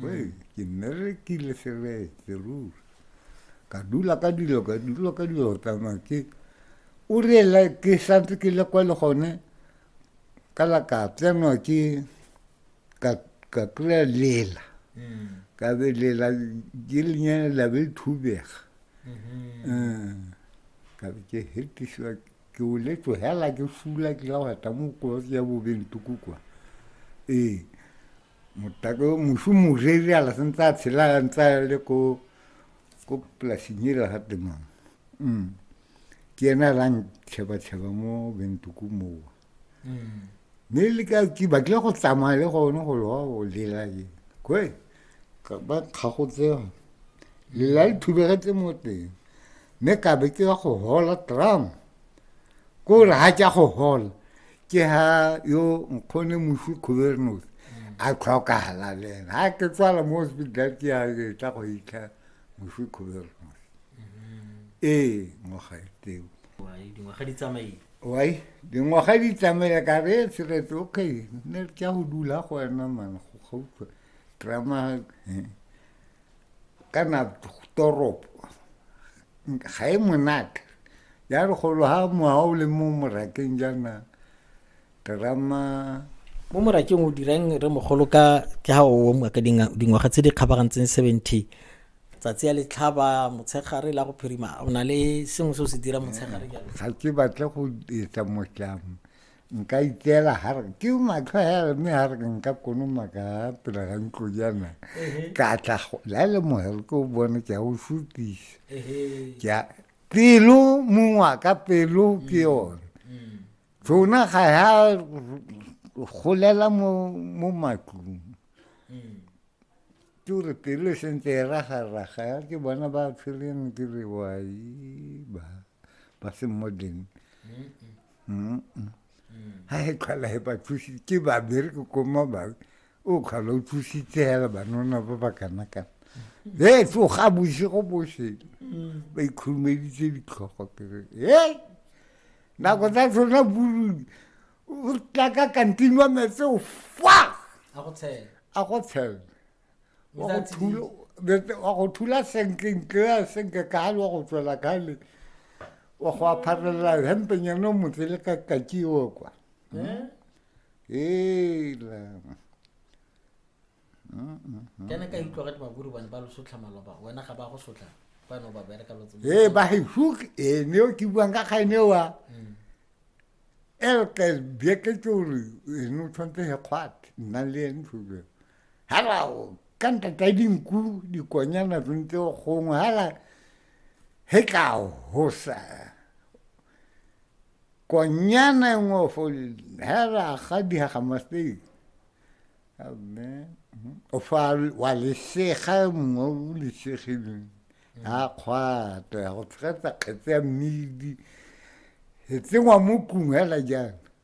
Wei, ke nne re kile seretse ruri ka dula ka dilo ka dula ka dilo tsamaya ke o reela ke santse ke le kwa le gone ka la ka tsenwa ke ka ka kry-a lela ka be lela ke lenyana la be thubega um ka be ke hetisiwa ke o le tlogela ke fula ke la wata mo kolotse ya bobentoko kwa ee Motako yo mošu moreri a la sentse a tshela a ntse a le ko ko polasing ela ga temang mm. ke ena a lang tšheba-tšheba mo bentoko mowa mm. mme le ka ke batlile go tsamaya le gone go loa go lela ke kwe ba kgagotse lela le thubegetse mo teng mme ka be ke ya go hola tram ko re ga ke ya go hola ke ha yo nkgone mosi kgobernos a tlhokagala le ena ga ke tswala mo hospital ke ya ke tla go itlha mosi kgobernos ee ngwaga e teo dingwaga di tsamaile wai dingwaga di tsamaile ka re e tshiretse okay ne ke ya go dula go wena man go gautlwa drama kana toropo ga e monate ya re golo ha moha o le mo morakeng jaana terama mo morakeng o dirang re mogolo ka ke ha o omwa ka dingwaga tse di kgabagantseng seventy tsatsi ya letlhaba motshegare la go phirima o na le sengwe se o se dira motshegare ga ke batle go etsa motlamo nka itseela ga re ke matlho a yare mme ga re ke nka konoma ka pela ga ntlo jaana ka tla la le mogere ke o bone ke a o sutisa ke pelo mongwa ka pelo ke mm. yone mm. tsona ga ya golela mo mo matlong mm. ke gore pelo e sentse e ragaraga ya ke bona ba tshwereng ke re wai ba ba se modern mm. ha e tlhola e ba thusi ke ba bereke ko mo ba o tlhola o thusitse hela banona ba ba kana kana e tsoga bosigo boše ba ikhurumeditse ditlhogo kere e nako tsa tsona burudi o tla ka kantinwa metse o fa a go tshela wa go thula senkentle senke kale wa go tswela kale wa go apharelela hempenyana o motse le ka kakiwo kwa hmm? eh? ela hmm, hmm, kene ka utlwa gate baburu bane ba lo sotlha maloba wena ga ba go sotlha bano ba bereka lotse ee ba he hook ene o ke buang ka kgaene wa elke bjeketse gore ene o tshwanetse he kgwate nna le ene tshobjeng Hello, ka nta ta dinku dikonyana tsontse gongwe hala he tla hosa konyana e nngwe fo hela ga dihaga masteng amen o fa wa lesega mongwe o lesegileng a kgwata ya go tshegetsa kgetse ya mmidi e tsengwa mo tlung hela jang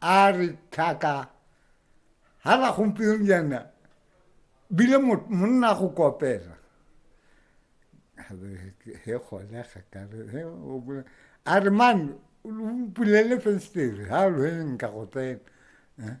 a re tlhaka ga la gompieno jaana bile monna go kopela he gone ga kare a re man o pulele festere ga lweng ka go tsena